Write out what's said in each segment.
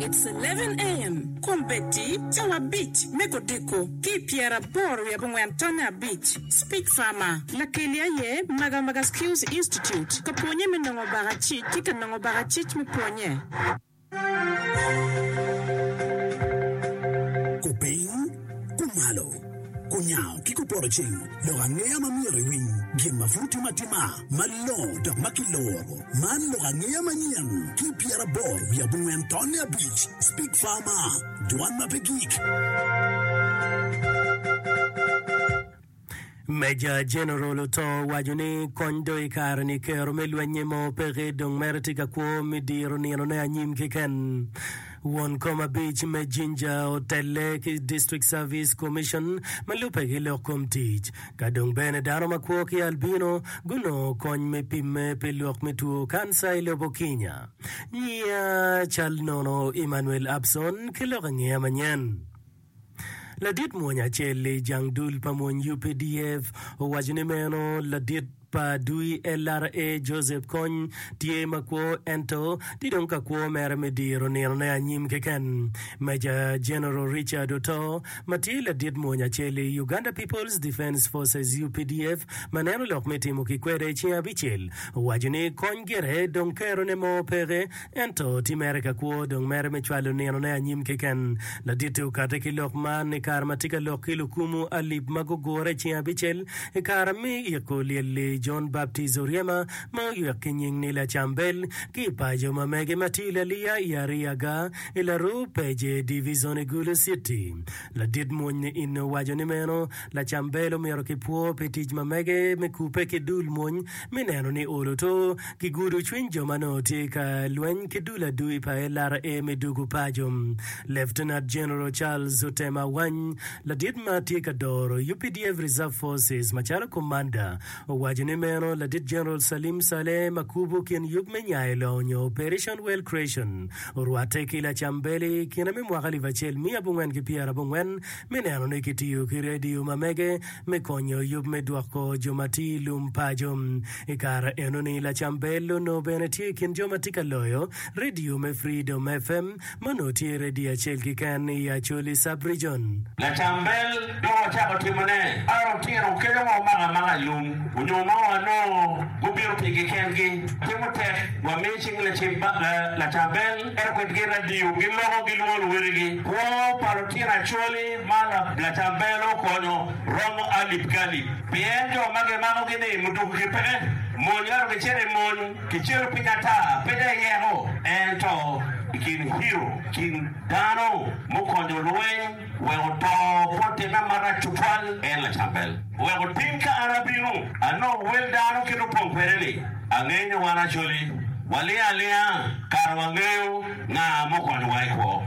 It's eleven AM Kombeddi cawa abic me kodiko ki i pyeraboro wiye abongwen tonne abic Speech Farmer Lakeli aye Magamaga Skills Institute ka pwonye me nongo baka cic ki ka nongo baka cic me pwonye. Kupiny, kumalo, kunyango ki kupoto ceng loko angeya ma myero iwiny gin ma pud itimo atima. Malongo dok ma kiloro. Man lok angeya manyen ki pyeraboro wiye abongwen tonne abic, Speak Farmer, Dwan ma pe gik. Meja Jeneral oto owaco ni kony dong i kare-ni, kero me lweny-nyi mo peke, dong mere tye ka kwo me diro ninone anyim keken. Won kom abic me Jinja otelle ki District Service Commission ma lubbe ki lok kom tic. Ka dong bene dano makwo ki albino gunongo kony me pimme pi lok me two kanca i lobo Kinya. Nyiya cal nono Emmanuel Abson ki lok i ngeya manyen. Ladit mwony acel i jang dul pa mwony UPDF owaco ni meno ladit pa dui LRA Joseph Kony tye ma kwo ento tye dong ka kwo mere me diro nino ne anyim keken. Major General Richard Oto ma tye ladit mwony acel i Uganda People's Defence Forces UPDF ma neno lok me timo ki kwede cing abicel owaco ni Kony gire dong kero ne mo peke Ento ti mere ka kwo dong mere me cwalo ninone anyim keken. Laditte okate ki lok man ni kare ma ti ka lok ki lukumu alip ma gugure i ceng abicel i kara mi iko olyel-li Jon Baptij oryema ma oywek ki nying ni Lacambel ki i paco ma mege ma ti laliya i Ariyaga i laruu Peje Divizon i Gulu Citi. Ladit mwony ni inne owaco ni meno Lacambel omito ki pwo pi tic ma mege me kupe ki dul mwony me neno ni olo to gigudo cwiny jo ma nongo tye ka lweny ki dul adui pa LRA me dugo paco. Lieutenant General Charles Otem Awany, ladit ma tye ka doro updf Reserve Forces macalo komanda, owaco ni meno ladit General Salim Saleh ma kubo kin yub me Nyayo Long nyo Operation Well Creation orwatte ki Lacambeli i kine me mwaka alip acel miya abongwen ki pyera abongwen me neno ni kitiyo ki redio ma mege me konyo yub me dwoko jo ma tye i lum paco. I kare enoni, Lacam Bell onongo bene tye i kin jo ma tye ka loyo redio me Freedom FM, ma onongo tye redio acel keken i Acholi Sub-Region. Lacam Bell dong ocako timo ne par otino kelo wa omako amaka i lum onyo ma wa nongo gubino pigi kengi. Watimo tek wa mi cing lacim Lacam Bell ento kwedgi radio gi loko gi lwongo luwotgi. Kwo pa lutino Acholi. Ma lacambelo konyo romo alip ki alip pien jo ma gimakogi ni mudukugi peke. Monyere gicito i mony ki cito piny ata, pe dong i yeko, ento i kin hiro, i kin dano mukonyo lweny wek oto bot timme marac tutwal, en lacambel. Wek otim ka an abino, anongo wel dano kit opong kwede-ni. Angeyo ni wan Acholi waling alinga, kara wangeyo nga mukonyowa i kwo.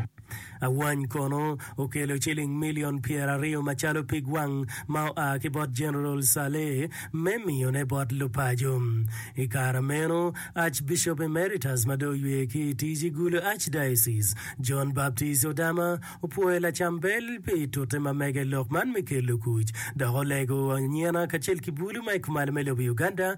Awany kono okelo ciling milion pyeraryo macalo pig wang ma oa ki bot Jeneral Saleh me miyone bot lupaco. I kare meno, Archbishop Emeritus ma dong oywe ki i tic i Gulu Archdiocese, John Baptist Odama, opwoyo lacam bel pi tute ma mege i lok man me kelo kuc, dok olego anyena kacel ki bulu ma i kumalo me lobo Uganda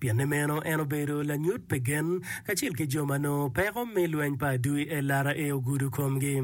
Pienni meno en obedo lanyut pi gen kacel ki jo ma nongo peko me lweny pa adwi LRA ogudo komgi.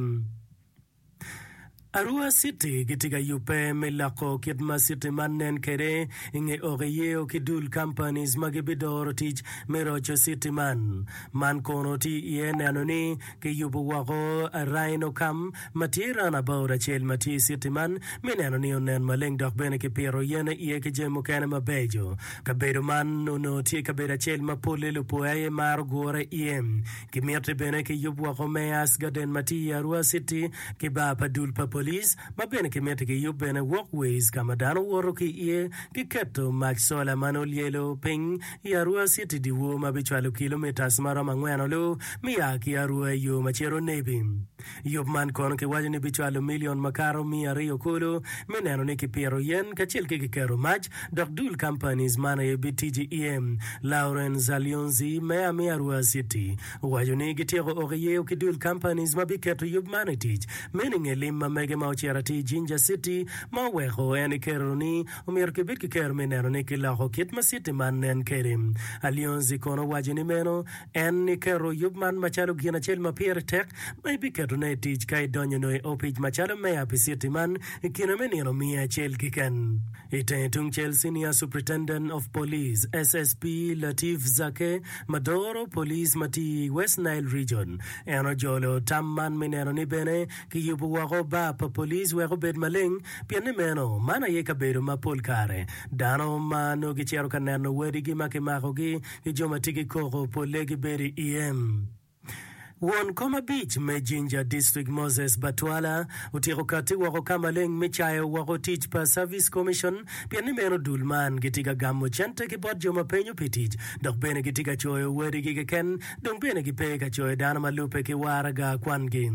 Arua City gitye ka yubbe me loko kit ma city man nen kwede i nge oki yeo ki dul companies ma gibidoro tic me roco city man. Man kono tye iye neno ni kiyubo woko Rhino Cam ma tye runabout acel ma tye i citi man me neno ni onen maleng dok bene kipito yen iye ki jami mukene mabeco. Kabedo man onongo tye kabedo acel ma polle lupoya aye maro gure iye. Gimitte bene kiyub woko me Ice Garden ma tye i Arua Citi ki bar pa dul pa police ma bene kimitti kiyub bene walkways ka ma dano woto ki iye ki keto mac sola ma nongo lyelo piny i Arua Citi dyewor ma bicwalo kilometres ma romo angwen olu me ya ki Arua i yo ma cito Nebi. Yub man kono kiwaco ni bicwalo milion makato miya aryo kulu me neno ni kipito yen kacel ki kiketo mac, dok dul companies man aye bitiji iye. Lauren Zalionzi me Amia Ruaa City owaco ni gityeko oko iyeo ki dul companies ma biketo yub man i tic. Meno inge lim ma mege ma ocito atir i Jinja City ma oweko en ekerro ni omyero kibed ki kero me neno ni kiloko kit ma city man nen kede. Alionzi kono owaco ni meno En ni keto yub man macalo gin acel ma pire tek ma ibiketone i tic ka idonyo nongo i opic macalo meya pi citi man i kine me nino miya acel kiken. I tenge tungcel, Senior Superintendent of Police, SSP, Latif Zake ma doro police ma tiyo i West Nile Region, en ojolo tam man me neno ni bene kiyubo woko bar pa police wek obed maleng pienni meno man aye kabedo ma pol kare dano ma nongo gicito ka neno wadigi ma kimakogi ki jo ma tye ki koko polle gibedo i iye. Won kom abic me Jinja District Moses Batwala otyeko katti woko ka maleng me cayo woko tic pa Service Commission pien ni meno dul man gitye ka gamo cente ki bot jo ma penyo pi tic dok bene gitye ka coyo wadigi keken dong bene gipe ka coyo dano ma lubbe ki waraga kwangi.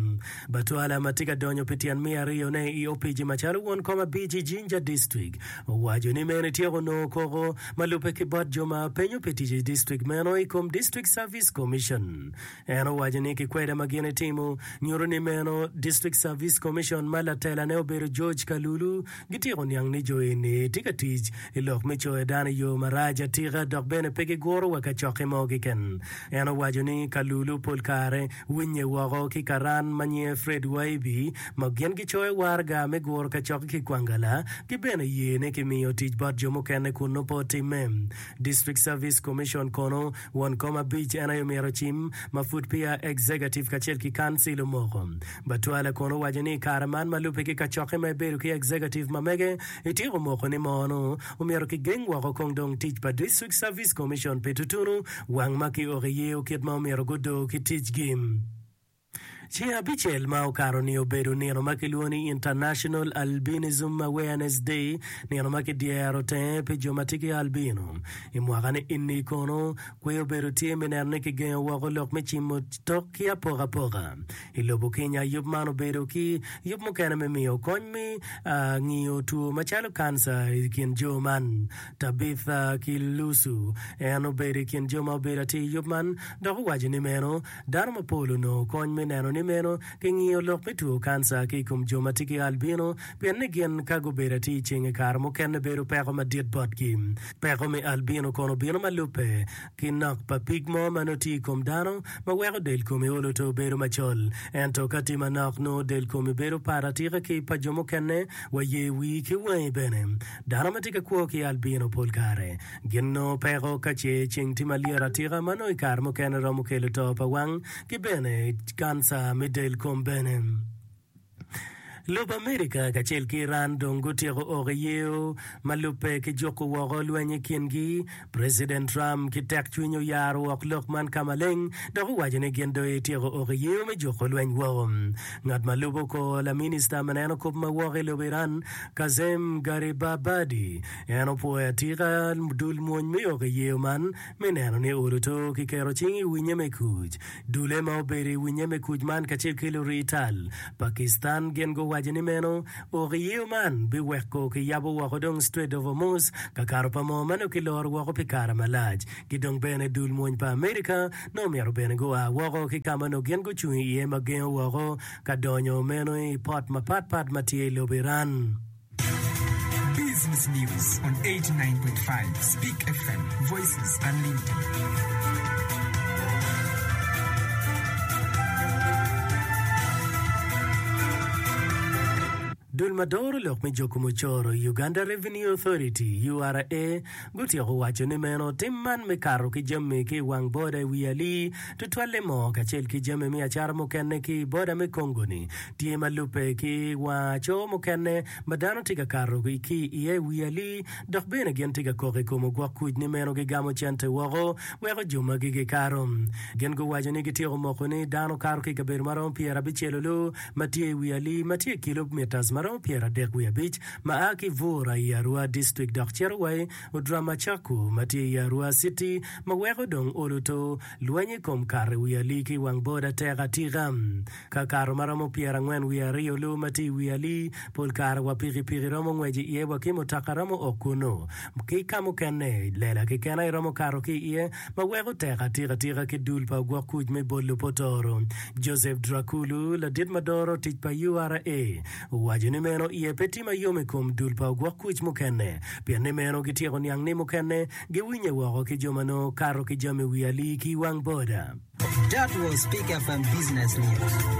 Batwala ma tye ka donyo pi tyen me ariyone i opici macalo won kom abic i Jinja District Owaco ni meno etyeko nongo koko ma lubbe ki bot jo ma penyo pi tic i district meno i kom District Service Commission. En owaco ni kikwede ma gin etimo nyuto ni meno District Service Commission ma latelane obedo George Kalulu gityeko niang ni jo eni tye ka tic i lok me coyo dano i yo marac atika dok bene pe giguro wa kacokki mo keken. En owaco ni Kalulu pol kare Winye woko ki karan ma nyinge Fred Waibi ma gin gicoyo waraga me guro kacok ki Kwangala ki bene ye ni kimiyo tic bot jo mukene kun nongo pe otimme. District Service Commission kono won kom abic en aye omyero ocim ma pud peya Executive kacel ki Council omoko. Batwale kono owaco ni i kare man ma lubbe ki kacokke ma ibedo ki Executive ma mege ityeko moko ni mono Omyero kigeng woko kong dong tic pa District Service Commission pi tutunu wang ma ki oko iye o kit ma omyero gudo ki ticgi. Ceng abicel ma okato ni obedo nino ma kilwongo ni International Albinism Awareness Day, nino ma ki dyero tenge pi jo ma tye ki albino. I mwaka ni inni kono, kwe obedo tye me neno ni kigengo woko lok me cimo tok ki apokapoka. I lobo Kenya, yub man obedo ki yub mukene me miyo kony me ngiyo two macalo kanca i kin jo man. Tabitha ki Lucu, en obedo i kin jo ma obedo atir i yub man dok owaco ni meno dano mapol onongo kony me neno ni meno kingiyo lok me two kanca ki i kom jo ma tye ki albino pien ni gin ka gubedo atir ceng i kare mukene bedo peko madit botgi. Peko me albino kono bino ma lubbe. ki nok pa pig mo ma nongo tye i kom dano ma weko del komi olo to bedo macol. Ento ka tye manok, nongo del komi bedo pat atika ki pa jo mukene, wa ye wii ki wangi bene. Dano ma tye ka kwo ki albino pol kare gin nongo peko ka ce ceng tye malyet atika ma nongo i kare mukene romo kelo to pa wang ki bene kanca me del kom bene. Lobo America kacel ki Iran dong gutyeko oko i yeo ma lubbe ki juko woko lweny i kingi. President Trump ki tek cwiny oyaro wok lok man ka maleng dok owaco ni gin dong etyeko oko i yeo me juko lweny woko. Ngat ma lubo kor laminista ma neno kop ma woko i lobo Iran, Kazem Gharibabadi, en opwoyo atika dul mwony me oko i yeo man me neno ni oluto ki keto cing i winye me kuc. Dule ma obedo i wi nyeme kuc man kacel ki lurii tal pa Kistan gin guwaco ni meno ok iyeyo man biweko kiyabo woko dong Strait of Hormuz kakato pa moo ma nongo kiloro woko pi kare malac ki dong bene dul mwony pa America nongo omyero bene gua woko ki kama nongo gin gucung iye ma gengo woko ka donyo meno i port mapat pat ma tye i lobo Iran. Business News on 89.5 Speak FM, Voices Unlimited. Dul ma doro lok me joko mucoro i Uganda Revenue Authority, URA, gutyeko waco ni meno tim man me kato ki jami ki i wang boda i wi ali Tutwalle mo kacel ki jami me acara mukene ki i boda me Congo-ni tye ma lubbe ki wa co mukene ma dano tye ka kato ki iye i wi ali dok bene gin tye ka kok i kom ogwok kuc ni meno gigamo cente woko wek ojo ma gigi kato. Gin guwaco ni gityeko moko ni dano kato ki i kabedo ma romo pyera abicel olo ma tye i wi ali ma tye i kilob mitas ma romo pyera adek wiye abic ma a ki Bura i Arua District dok cito wa i Odram Acaku ma tye i Arua Citi ma weko dong oluto lweny i kom kato i wi ali ki i wang boda tek atika. Ka kato ma romo pyera angwen wiye aryo lu ma tye i wi ali, pol kare wa pikipiki romo ngwec i iye wa ki mutoka romo ok kunnu. Ki ka mukene, lela kekena iromo kato ki i iye ma weko tek atika tika ki dul pa ogwok kuc me bol lupotoro. Joseph Drakulu, ladit ma doro tic pa URA. Waco ni meno iye pe tye ma yom i kom dul pa ogwok kuc mukene, pien ni meno gityeko niang ni mukene giwinye woko ki jo ma nongo kato ki jami wi alii ki i wang boda. That was Peak FM Business News.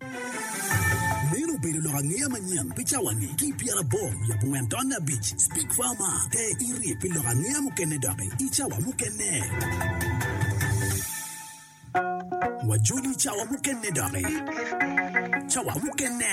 Meno obedo lok angeya manyen pi cawani ki i pyeraboro wiye abongwen taun abic. Speak Far Mar, Te iri pi lok angeya mukene doki i cawa mukene. Wajoli i cawa mukene doki. Cawa mukene.